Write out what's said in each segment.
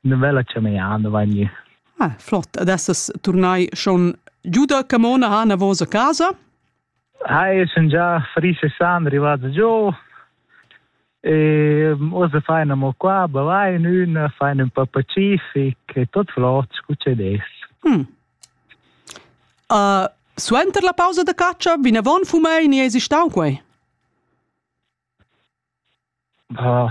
Una bella ciamaiada va gnü. Ah, flott. Adesso tornai schon giù da Camona ha una vosa casa? Hai, sun già Fris e San arrivati giù e osa fai una qua, vai in una, fai un po' pacific e tot flot, succede. Mm. Uh, suenter la pausa da caccia, vinavon fumei ni esi stau quei? Uh,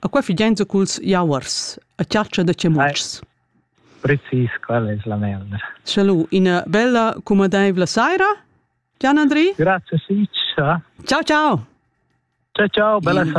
A qua figiainza culs jauers, a chatscha da chamuotschs. Precis, quella es la melna. Salü, ina bella cumadaivla saira, Gian Andri. Grazie, Ciccia. Ciao, ciao. Ciao, ciao, bella saira.